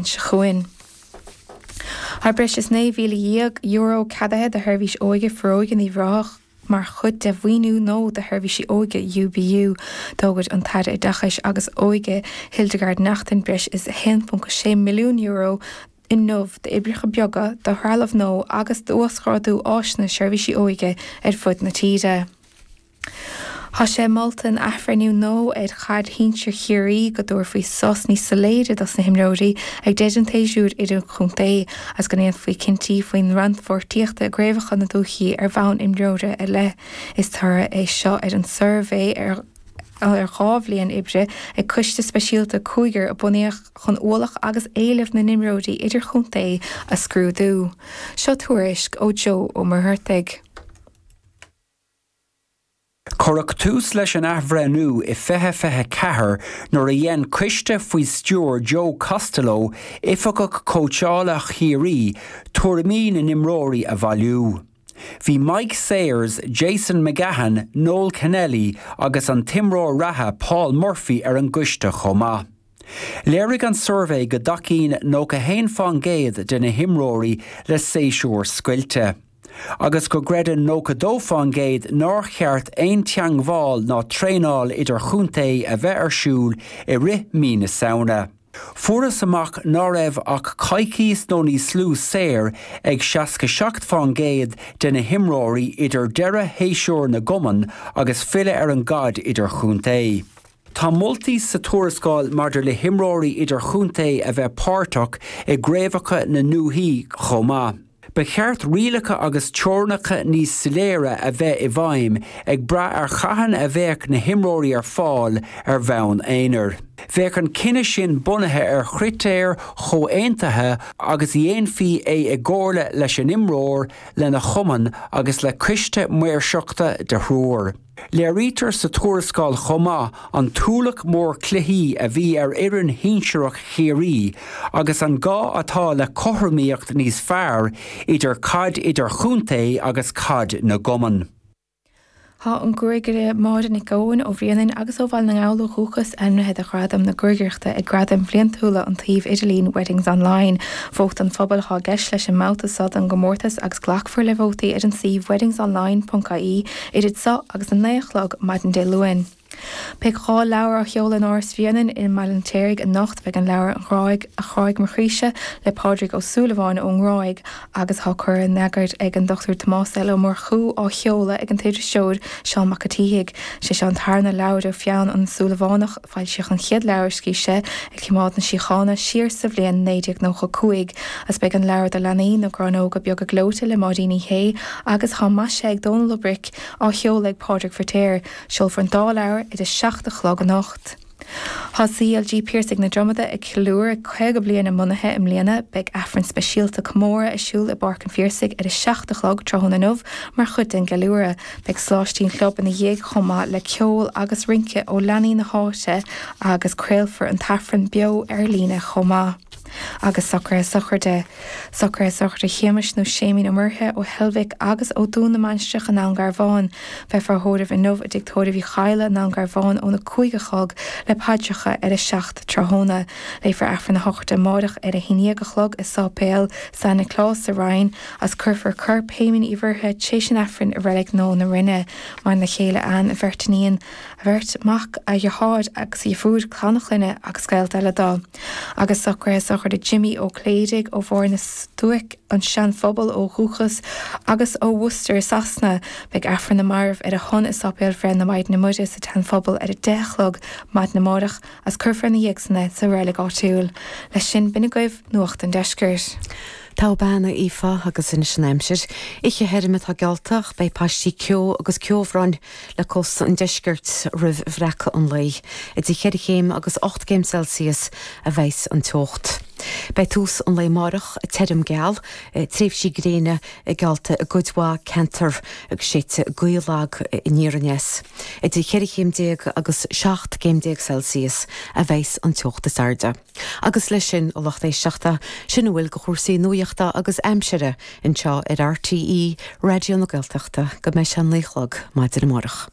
seo chugainn. Tá breis is €19,000 ceadaithe do Sheirbhís Óige Foróige in Uíbh Ráthach mar chuid de mhaoiniú nua do sheirbhísí óige UBU. D'fhógair an tAire Oideachais agus Óige, Hildegarde Naughton, breis is €1.6 milliún inniu d'oibreacha beaga, do threalamh nua agus d'uasghrádú áiseanna seirbhísí óige ar fud na tíre. Tá sé molta in athbhreithniú nua ar Chaid Shinsir Chiarraí go dtabharfaí sos níos soiléire dos na himreoirí ag deireadh an tséasúir idirchontae agus go ndéanfaí cinntí faoin rannpháirtíocht i gcraobhacha na dúichí ar bhonn imreora ar leith. Is toradh é seo ar an suirbhé ar dhá bhliain oibre ag coiste speisialta cúigir a bunaíodh chun ualach agus éileamh na n-imreoirí idirchontae a scrúdú. Seo tuairisc ó Joe Ó Muircheartaigh. Cuireadh tús leis an athbhreithniú i 2024 nuair a dhein coiste faoi stiúir Joe Costello, Oifigeach Cóitseála Chiarraí, tuairimí na n-imreoirí a bhailiú. Bhí Mike Sayers, Jason McGahan, Noel Kennelly agus an t-imreoir reatha Paul Murphy ar an gcoiste chomh maith. Léirigh an suirbhé go dtacaíonn 91 fán gcéad de na himreoirí le séasúr scoilte. agus go gcreideann 92% nár cheart aon teagmháil ná traenáil idir-chontae a bheith ar siúl i rith mí na Samhna. Fuarthas amach ná raibh ach coicíos nó níos lú saor ag 67% de na himreoirí idir deireadh shéasúr na gcumann agus filleadh ar an gcaid idir-chontae. Tá moltaí sa tuarascáil maidir le himreoirí idir-chontae a bheith páirteach i gcraobhacha na ndúichí chomh maith. Ba cheart rialacha agus teorainneacha níos soiléire a bheith i bhfeidhm ag brath ar cathain a bheadh na himreoirí ar fáil ar bhonn aonair. Bheadh an cinneadh sin bunaithe ar chritéir chomhaontaithe agus dhéanfaí é i gcomhairle leis an imreoir, lena chumann agus le coiste maoirseachta de thriúr. Léirítear sa tuarascáil chomh maith an t-ualach mór cluichí a bhí ar fhoireann shinsearach Chiarraí agus an gá atá le cothromaíocht níos fearr idir caid idirchontae agus caid na gcumann. Tá an gruagaire Máire Nic Eoin ó Bhréanainn agus ó Bhaile na nGall ó dhúchas, ainmnithe do ghradam na gruagaireachta ag Gradaim bhliantúla an tsuímh idirlín Weddings Online. Vóta an phobail atá i gceist leis an mbabhta so don gcomórtas agus glacfar le vótaí ar an suíomh weddingsonline.ie. idir seo agus a naoi a chlog maidin Dé Luain. Beidh dhá leabhar á sheoladh in Áras Bhréanainn i mBaile an Fheirtéaraigh anocht, beidh an leabhar An Ghráig a Ghráigh Mo Chroíse le Pádraig Ó Súilleabháin ón nGráig agus atá curtha in eagar ag an Dr Tomás L. Ó Murchú á sheoladh ag an t-irisleoir Seán Mac a tSíthigh. Sé seo an tarna leabhar ó pheann an tSúilleabhánach. Foilsíodh an chéad leabhar a scrígh sé, Ag Cimeád na Síochána, siar sa bhliain 1995, agus beidh an leabhar do leanaí, Na Gráinneoga Beaga Gleoite le Máirín Uí Shé agus atá maisithe ag Dónall Ó Bric, á sheoladh ag Pádraig Firtéar. Seolfar an dá leabhar ag a seacht a chlog anocht. Tá CLG Piarsaigh na Dromada ag ceiliúradh 50 bliain a mbunaithe i mbliana. Beidh Aifreann speisialta comóradh ar siúl i bPáirc an Phiarsaigh ag a seacht a chlog tráthnóna inniu mar chuid den gceiliúradh. Beidh sóláistí sa chlub ina dhiaidh chomh maith le ceol agus rince ó leanaí na háite agus craolfar an tAifreann beo ar líne chomh maith. Agus socraithe sochraide. Socraithe sochraide Shéamais nó Séimín Ó Muirithe, ó Heilbhic agus ó Dún na Mainistreach i nDún Garbhán. Beifear á thórramh inniu i dTigh Tórraimh Uí Chadhla i nDún Garbhán óna cúig a chlog le paidreacha ar a seacht tráthnóna. Léifear Aifreann na sochraide amáireach ar a haon dhéag a chlog i Sáipéal San Nioclás sa Rinn. as cuirfear corp Shéamain Uí Mhuirthe tréis an Aifrinn i reilig nua na Rinne. Maireann a chéile Ann, a bheirt iníon, a bheirt mhac, a dheartháir agus a dheirfiúr, clann a chlainne agus gaolta eile dó, agus socraithe sochraide Jimí Ó Cléirigh ó Bharr na Stuaice, an Seanphobal ó dhúchas, agus ó Worcester i Sasana. Beidh Aifreann na Marbh ar a shon i Sáipéal Bhreith na Maighdine Muire sa tSeanphobal ar a deich a chlog maidin amárach as cuirfear ina dhiaidh san é sa reilig áitiúil. Leis sin, binne agaibh, Nuacht an Deiscirt. Tá, a Aoife, agus anois an aimsir, oíche thirim atá geallta ach beidh paistí ceo agus ceobhráin le cósta an deiscirt roimh bhreacadh an lae. Idir cheithre chéim agus ocht gcéim Celsius a bheidhs an teocht. Beidh tús an lae amáireach tirim geal, tréimhsí gréine geallta i gcuid mhaith ceantar agus séidfidh gaoth lag aniar aneas. Idir cheithre chéim déag agus seacht gcéim déag Celsius a bheidhs an teocht is airde. Agus leis sin, a lucht éisteachta, sin a bhfuil de chúrsaí nuachta agus aimsire anseo ar RTÉ Raidió na Gaeltachta go mbeidh sé a naoi a chlog maidin amárach.